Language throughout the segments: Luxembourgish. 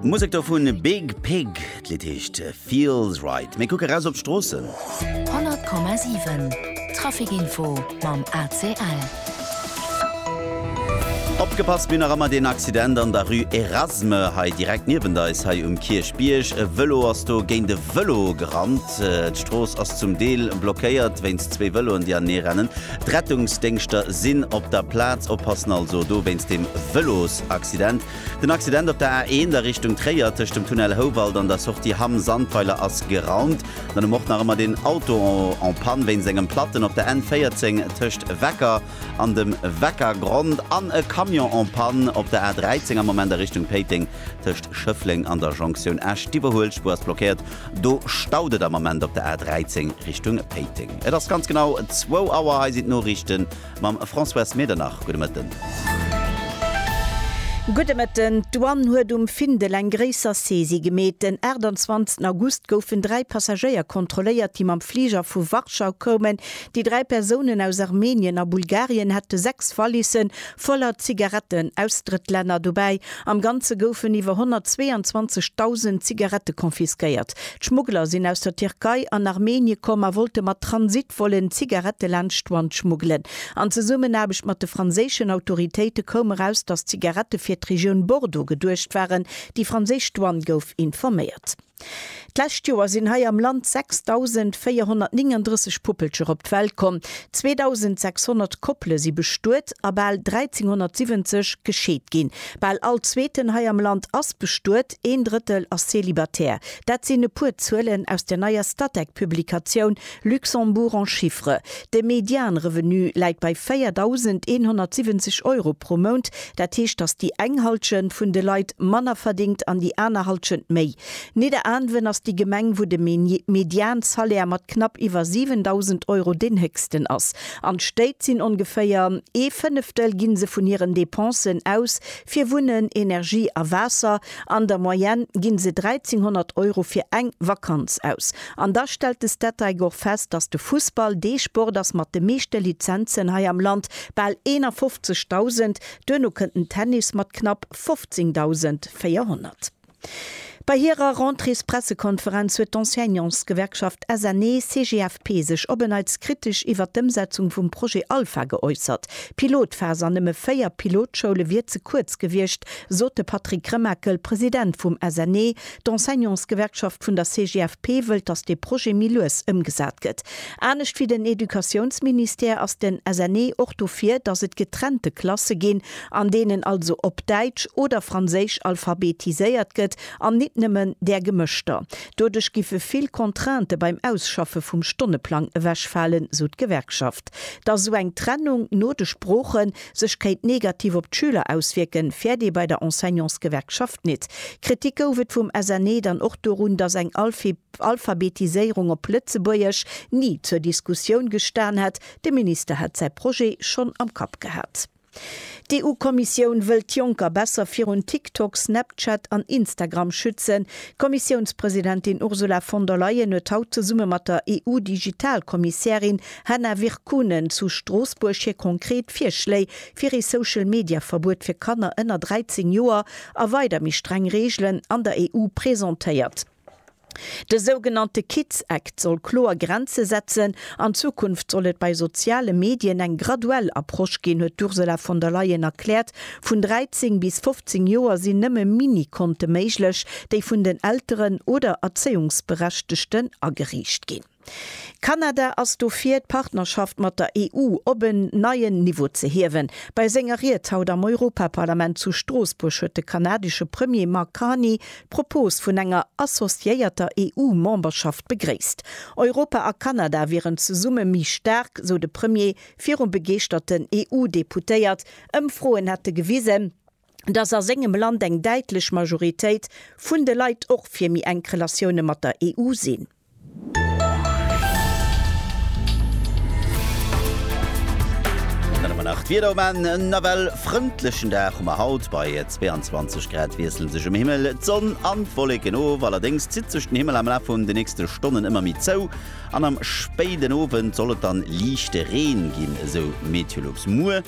D'Musek do vun Big Pig, d'Lidd heescht Feels Right. Mir kucke raus op d'Stroossen. 100,7 Traficinfo mam ACL. Opgepasst, mir hunn nach ëmmer een Accident an der Rue Erasme hei direkt niewent eis, hei um Kierchbierg. E Vëlo ass do géint e Vëlo gerannt. D'Strooss ass zum Deel blockéiert wéinst zwee Vëloen, déi aneneerennen. D'Rettungsdéngschter sinn op der Plaz a passen also do wéinst dem Vëlosaccident. Den Accident op der A1 a Richtung Tréier tëscht dem Tunnel Houwald an der Sortie Hamm Sandweiler ass geraumt. Dann um och nach ëmmer den Auto en panne wéinst engem Platten op der N14 tëscht Wecker an dem Weckergrond an e Camion en panne op der A13 am Moment a Richtung Péiteng tëscht Schëffleng an der Jonktioun Esch. D'Iwwerhuelspuer ass blockéiert, do staut et am Ament op der A13 Richtung Péiteng. Et ass ganz genau zwou Auer. Hei sinn d'Noriichte mam Françoise Medernach. Gudde Mëtten. Gudde Mëtten. D'Douane huet um Findel eng gréisser Saisie gemeet. Den 28 August goufen dräi Passagéier kontrolléiert, déi mam Fliger vu Warschau koumen. Déi dräi Persounen aus Armenien a Bulgarien hätte sechs Valissen, Voller Zigaretten aus Drëttlänner dobäi. Am Ganze goufen iwwer 122.000 Zigarette confisquéiert. D'Schmuggler sinn aus der Tierkei an Armenie komm a wollte mat Transitvollen d'Zigarette laanscht d'Schwand schmuggelen. An Zesummenaarbecht mat de franséischen Autoritéite koum eraus, datt d'Zigarette fir d'Regioun Bordeaux geduecht waren. Déi franséisch Douane gouf informéiert. D'lescht Joer sinn hei am Land 6.439 Puppelcher op d'Welt komm, 2.600 Koppele si bestuet a bal 1.370 gescheet ginn. Bal all Zweeten hei am Land ass bestuet, een Drëttel ass zelibatär. Dat sinn e puer Zuelen aus der neier Statec-Publikatioun Luxembourg en chiffres, De Medianrevenu läit bei 4.170 Euro pro Mount. Dat heescht, datt déi eng Halschent vun de Leit manner verdéngt an déi aner Halschent méi. Nidderaanwen ass déi Gemeng, wou de Mediansalaire mat knapp iwwer 7.000 Euro deen héchsten ass. An d'Stéit sinn ongeféier ee Fënneftel gi se vun hiren Dépensen aus fir Wunnen, Energie a Waasser. An der Moyenne ginn se 1.300 Euro fir eng Vakanz aus. An da stellt de Statec och fest, dass de Fussball dee Sport ass mat de meeschte Lizenzen hei am Land, bal 51.000, duerno kënnt den Tennis mat knapp 15.400. Bei hirer Rentréespressekonferenz huet d'Enseignantsgewerkschaft SNE-CGFP sech op en Neits kritesch iwwert d'Ëmsetzung vum Projet Alpha geäussert. D'Pilotphas an nëmme véier Pilotschoule wier ze kuerz gewiescht, sot de Patrick Remakel, President vum SNE. D'Enseignantsgewerkschaft vun der CGFP wëllt, datt dee Projet méi lues ëmgesat gëtt. Anescht wéi den Educatiounsministère ass den SNE och dofir, datt et getrennte Klasse ginn, an deenen also op Däitsch oder Franséisch alphabetiséiert gëtt an nit nëmmen där gemëschter. Doduerch giffe vill Contrainte beim Ausschaffe vum Stonneplang ewechfalen, sou d'Gewerkschaft. Datt esou eng Trennung no de Sproochen, sech kéint negativ op d'Schüler auswierken, fäert ee bei der Enseignantsgewerkschaft nit. Kritik gouf et vum SNE dann och dorun, datt eng Alphabetiséierung op Lëtzebuergesch ni zur Diskussioun gestan hätt, de Minister hätt säi Projet schonn am Kapp gehat. D'EU-Kommissioun wëll d'Jonker besser virun TikTok, Snapchat an Instagram schützen. D'Kommissiounspresidentin Ursula von der Leyen huet haut zesumme mat der EU-Digital-Kommissärin Hanna Virkkunen zu Stroossbuerg hir konkret Virschléi fir ee Social Media Verbuet fir Kanner ënner 13 Joer a weider méi streng Reegelen an der EU presentéiert. De sougenannte Kids Act soll kloer Grenze setzen. An Zukunft soll et bei soziale Medien eng graduell Approche ginn, huet d'Ursula von der Leyen erkläert. Vun 13 bis 15 Joer sinn nëmme Mini-Konte méiglech, déi vun den Elteren oder Erzéiungsberechtegten ageriicht ginn. Kanada ass dofir, d'Partnerschaft mat der EU op en neien Niveau ze hiewen. Bei senger Ried haut am Europaparlament zu Stroossbuerg huet de kanadesche Premier Mark Carney d'Propos vun enger associéierter EU-Memberschaft begréisst. Europa a Kanada wieren zesumme méi staark, sou de Premier virum begeeschterten EU-Deputéiert. Ëmfroen hätte gewisen, datt a sengem Land eng däitlech Majoritéit vun de Leit och fir méi enk Relatioune mat der EU sinn. D'Wieder um Enn, en nawell frëndlechen Dag hu mer haut, bei 22 Grad wiessele sech um Himmel d'Sonn an d'Wolleken of. Allerdéngs zitt sech den Himmel am Laf vun de nächste Stonnen ëmmer méi zou an am spéiden Owend soll et dann liichte Reen ginn, esou Meteolux. Muer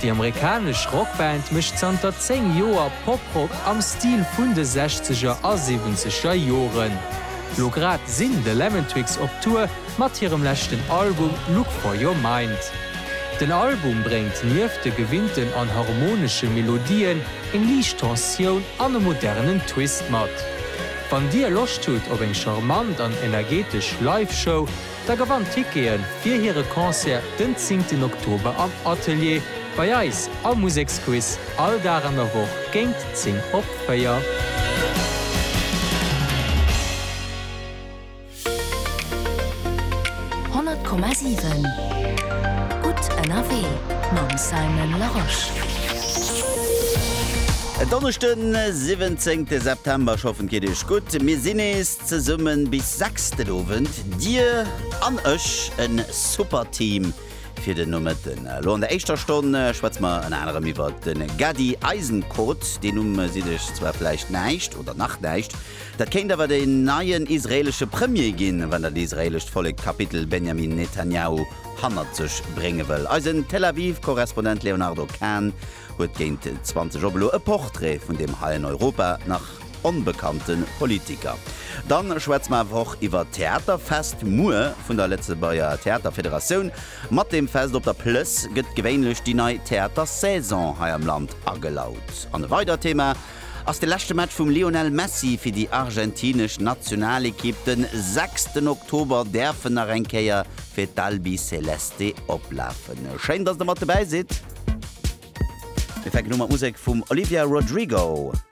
Déi amerikanesch Rockband mécht zanter 10 Joer Poprock am Stil vun de Sechzeger a Siwwenzeger Joren. Lo grad sinn The Lemon Twigs op Tour mat hirem leschten Album Look For Your Mind. Den Album bréngt nieft de gewinnten an harmonesche Melodien eng liicht Tensioun an e modernen Twist mat. Wann dir Loscht hutt op eng charmant an energetesch Live-Show, Da gewannt Tickete fir hire Concert den 10 ten Oktober am Atelier bei eis am Museksquiz, all Dag an der Woch géint 10 op 4. Honnert Komma siwen Gutt ënnerwee mam Simon Larosche. En Donneschden, 17 September, ech hoffen et geet iech gutt. Mir sinn nees. Zesummen bis 6 den Owend, dir an ech, en super Team fir den Nomëtten. Lo an der éischter Stonn schwätze mer ënner anerem iwwert den Gady Eisenkot, deen Numm sidd iech zwar vläicht näischt oder nach näischt, dat kéint awer den neien israelesche Premier ginn, wann dat israelescht Vollek d'Kapitel Benjamin Netanyahu hannert sech brénge wëll. Eisen Tel Aviv Korrespondent Léonardo Kahn huet géint 20 op elo e Portrait vun deem heien Europa nach. onbekannte Politiker. Dann schwätze mer awer och iwwert d'Theaterfest muer vun der Lëtzebuerger Theaterfederatioun. Mat deem Fest op der Plëss gëtt gewéinlech déi nei Theatersaison hei am Land agelaut. An e weidert Thema ass de leschte Match vum Lionel Messi fir déi argentinesch Nationalekipp. De sechsten Oktober däerf en nach eng Kéier fir d'Albiceleste oplafen. Schéin dass der mat dobäi sidd. Mir fänken u mat Musek vum Olivia Rodrigo.